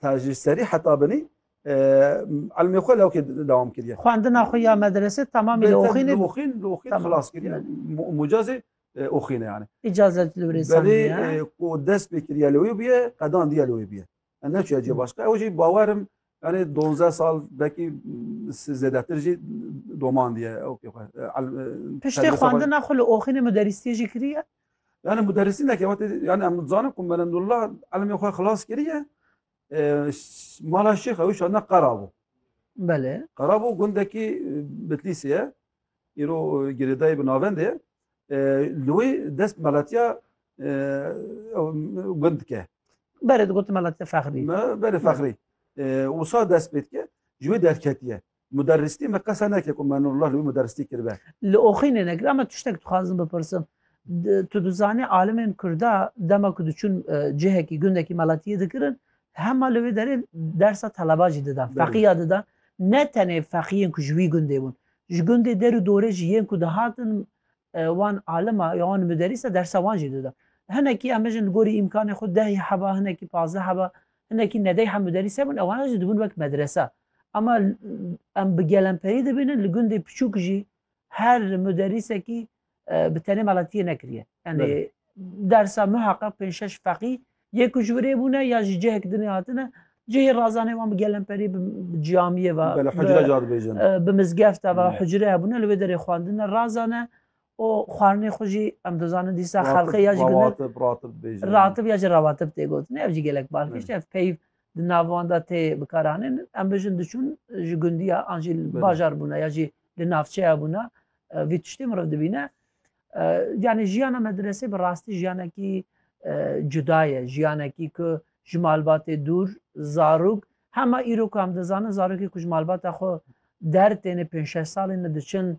Ta ji serî heta binî elmê xwe lewkê dewam kiriye. Xwendina xwe ya medrese tamamî li Oxînê Oxîn li Oxîn xilas kiriye. Mucazê Oxînê yani. İcazet li wê Belê ku dest pê kiriye li wê bûye qedan diye li wê bûye. Em neçûye cê başka ew jî bawerim yani 12 sal belkî zêdetir jî doman diye ew pê xwe. Piştê xwendina xwe li Oxînê muderîstiyê jî kiriye? Yani muderrisîneke wate yani em dizanin ku Merendullah elmê xwe xilas kiriye mala şêx ew şana qerabû. Belê. Qerabû gundekî Bitlîsê ye. Îro girêdayê bi navendê ye. Li wê dest melatiya gund dike. Berê digot melatiya fexrî. Berê fexrî. Wisa dest pê dike ji wê derketiye. Muderristî me qese neke ku me Nurullah li wî muderristî kiribe. Li oxînê nekir ema tiştek dixwazim bipirsim. Tu dizanî alimên Kurda dema ku diçûn e, cihekî gundekî meletiyê dikirin hema li wê derê dersa teleba jî didan, feqîya didan. Ne tenê feqîyên ku ji wî gundê bûn. Ji gundê der û dorê jî yên ku dihatin e, wan alima ya wan muderrîsa dersa wan jî didan. Hinekî em bijin li gorî îmkanê xwe dehê heba, hinekî pazdeh heba, hinekî nedeyha muderrîs hebûn ewana jî dibûn wek medresa. Ama em bi gelemperî dibînin li gundê piçûk jî her muderîsekî bi tenê malatiyê nekiriye. Yanî dersa muheqeq pênc şeş feqî yê ku ji wirê bûne ya jî cihek dinê hatine cihê razanê wan bi gelemperî bi camiyê ve Bele hicre ca dibêjin. bi mizgefta ve hicre hebûne li wê derê xwendin e razan e û xwarinê xwe jî em dizanin dîsa xelqê ya jî gundin Rawatib, ratib dibêjin. ratib ya jî rawatib tê gotin ev jî gelek balkêş e ev peyv Di nav wan de tê bikaranîn. Em bijin diçûn ji gundî ya an jî li bajar bûna ya jî li navçeya bûna vî tiştê miriv dibîne. Yanî jiyana medresê bi rastî jiyanekî cuda ye. Jiyanekî ku ji malbatê dûr zarok hema îro ku em dizanin zarokê ku ji malbata xwe der têne pênc şeş salî ne diçin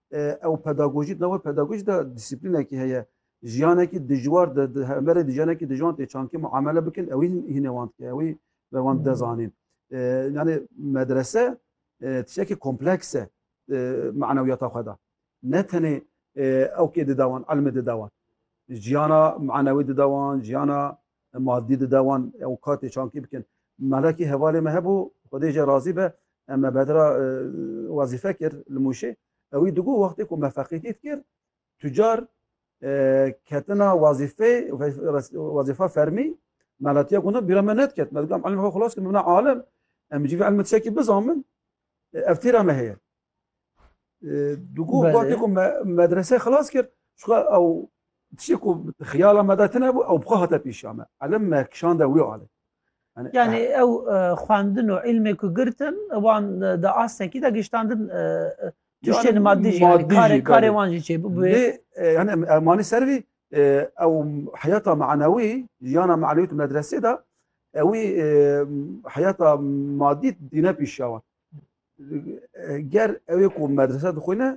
Ew pedagojî di nav wê pedagojî de dîsîplînekî heye. Jiyanekî dijwar di di hemberê di jiyanekî dijwan tê çankê muamele bikin ewî hînê wan dike ewî ve wan dide zanîn. Yani medrese tiştekî kompleks e manewiyata xwe de. Ne tenê ew kê dide wan elmê dide wan. Jiyana manewî dide wan, jiyana Madî dide wan ew katê çankî bikin. Melekî hevalê me hebû, Xwedê jê razî be, em me bedra e, wezîfe kir li Mûşê. Ewî digot wextê ku me feqîtî dikir, tucar e, ketina wezîfeyê wezîfa fermî melatiya guna bîra me nediket. Me digot em elmê xwe xilas kirin, min bina alim, em civî elmê tişekî bizamin, e, ev tîra me heye. Dugo wextê ku me medreseyê xilas kir çuka ew tiştê ku xiyala me de tine bû ew bi xwe hate pêşiya me. Elim me kişande wî alê. Yani ew xwendin û îlmê ku girtin wan di astekî de giştandin tiştên madî jî karê karê wan jî çêbû. Lê yani em manî ser vî ew heyata manewî jiyana manewî tu medresê de ewî heyata madî dîne pêşiya wan. ger ew ê ku medrese dixwîne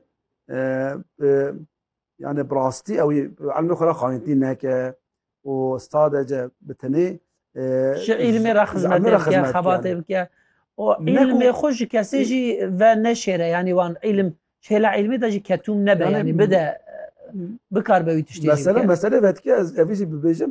yani bi rastî ew ê elmê xwe re xanîntî neke û sadece bi tenê ji îlmê re xizmetê bike xebatê bike û îlmê xwe ji kesê jî ve neşêre yanî wan îlim şêla îlmê de jî ketûm nebe yanî bide bikar be wî tiştê mesela mesele vedike ez evî jî bibêjim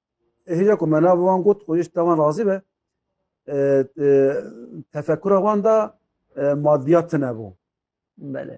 Hêja ku me nava wan got û ji te wan razî be tefekura wan da madiyat tune bû. Belê.